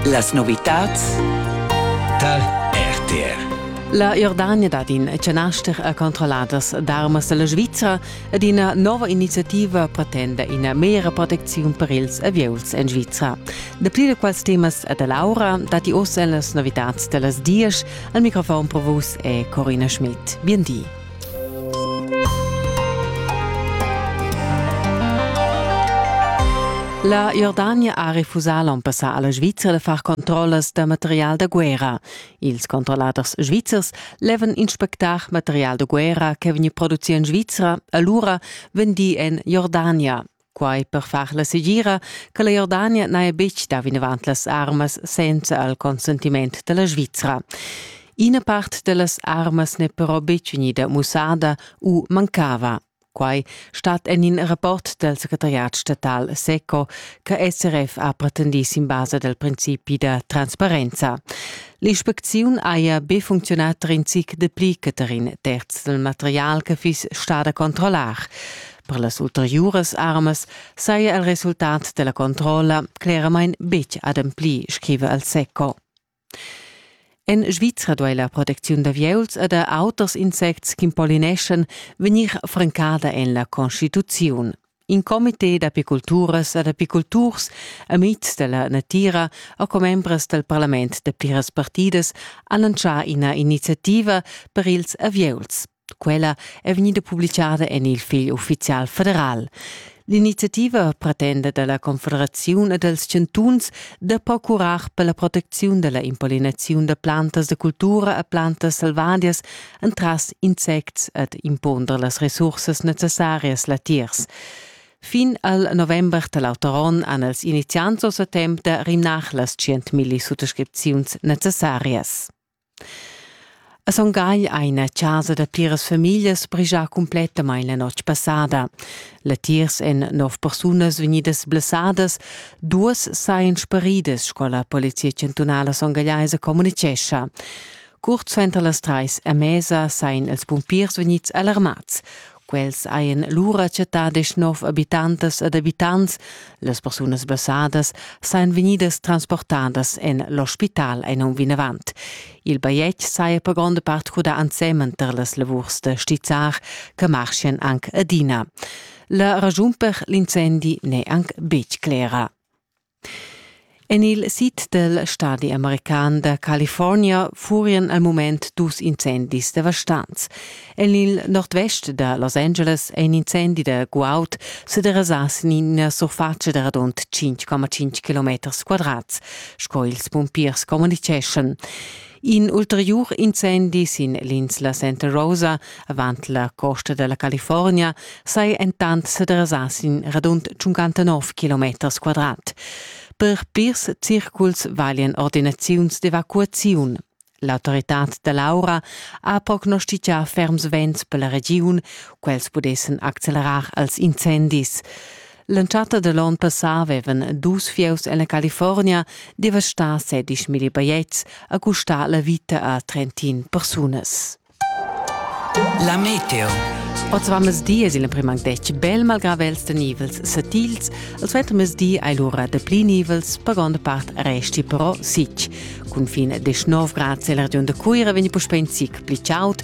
Las novitats tal RTR. La Jordania dad in chanaster a controlladas d'armas dalla Svizra ed ina nova iniziativa pretenda ina mera protecziun per ils avieuls en Svizra. Dapli da quels temas e da Laura datti oz en las novitats dallas dies. Al microfon per vus è Corina Schmidt. Bien di. La Jordania ha refusà l'on passà a la Svizra da far controllas da material da guerra. Ils controlladers svizzers levan inspectar material da guerra che vegni produci en Svizra, allura vendi en Jordania. Quai per far la segira che la Jordania n'haja betg dà vinavant las armas senza il consentiment da la Svizra. Ina part da las armas n'è però betg vegnida mussada u mancava. Quai stat en in rapport dal secretariat statal SECO che SRF ha pretendì sin basa dal principi da transparenza. L'inspecziun haja be funcziunà in zic dapli che tar in terz dal material che fiss stada controllar. Per las ulteriuras armas saja il resultat della controlla cleramain betg ademplì, scriva el Seco. En Svizra duai la protecziun d'avieuls e da auters insects ch'impolineschan vegnir francada en la Constituziun. In comité d'apiculturas ed apiculturs, amits della natira e commembres del parlament da pliras partidas han annunzià ina iniziativa per ils avieuls. Quella è vegnida publicada en il fegl uffizial federal. L'iniziativa pretenda da la Confederaziun e dals chantuns da procurar per la protecziun da la impollinaziun da plantas da cultura e plantas selvadias entras insects ed impunder las resursas necessarias latiers. Fin al november da l'auter onn han els iniziants oz temp da rimnar las 100.000 suttascripziuns necessarias. A Son Gagl ha ina chasa da pliras famiglias brigia cumplettamain la notg passada. Latiers èn nov persunas vegnidas blessadas, duas sajan sparidas, sco la Polizia chantunala songagliaisa communitgescha. Curt suenter las trais a mesa sajan ils pumpiers vegnids alarmads. Quels hajan lura chattà deschnov abitantas ed abitants. Las persunas basadas sajan vegnidas transportadas en l'ospital en um vinavant. Il bajetg saja per gronda part crudà ensemen tar las lavurs da stizzar che marchian anc adina. La ragiun per l'incendi n'è anc betg clera. En il sid dal stadi american da California furian al mument dus incendis devastants. En il nordvest da Los Angeles è in incendi da guaud sa derasà sin ina surfatscha da radund 5,5 km quadrats, sco ils pumpiers communiceschan. In ulteriur incendi sin l'insla Santa Rosa, avant la costa della California, sei entant sedresà sin radund 59 km quadrat. Per pirs circuls valien ordinaziuns d'evacuaziun. L'autoritad da Laura ha prognostichà ferms vents per la regiun, quels pudessen accelerar als incendis. L'entschatta da l'onn passà avevan dus fieus en la California devastà sedisch milli bajetgs e custà la vita a trentin persunas. La meteo. Oz va mezdi es il emprim anc detg bel malgrà vels da nivels satils. Il suenter mezdi hai lura dapli nivels, per gronda part resti però sic. Cun fin 19 grad c'è la regiun da Cuira vegni puspè in zic pli chaud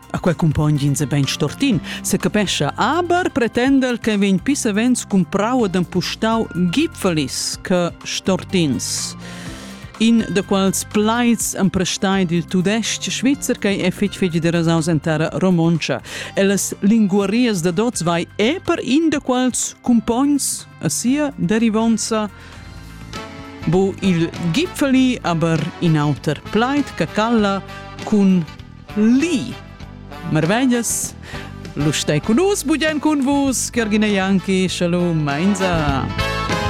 A quei cumpogn ins e bein stortin, secapescha, aber pretendel che vegn pis savens cumprau ed empustau gipfelis che stortins. In da quals plaids emprestai dil tudesc svizzer che è fitg fitg de rasaus en terra romontscha. E las linguarias da dots vai e per in da quals cumpogns a sia derivonza bu il gipfeli aber in auter plaid che calla cun Li! Marveglias! Lu stai cun nus, bugen cun vus, Gergina Janki, shalom, mainza!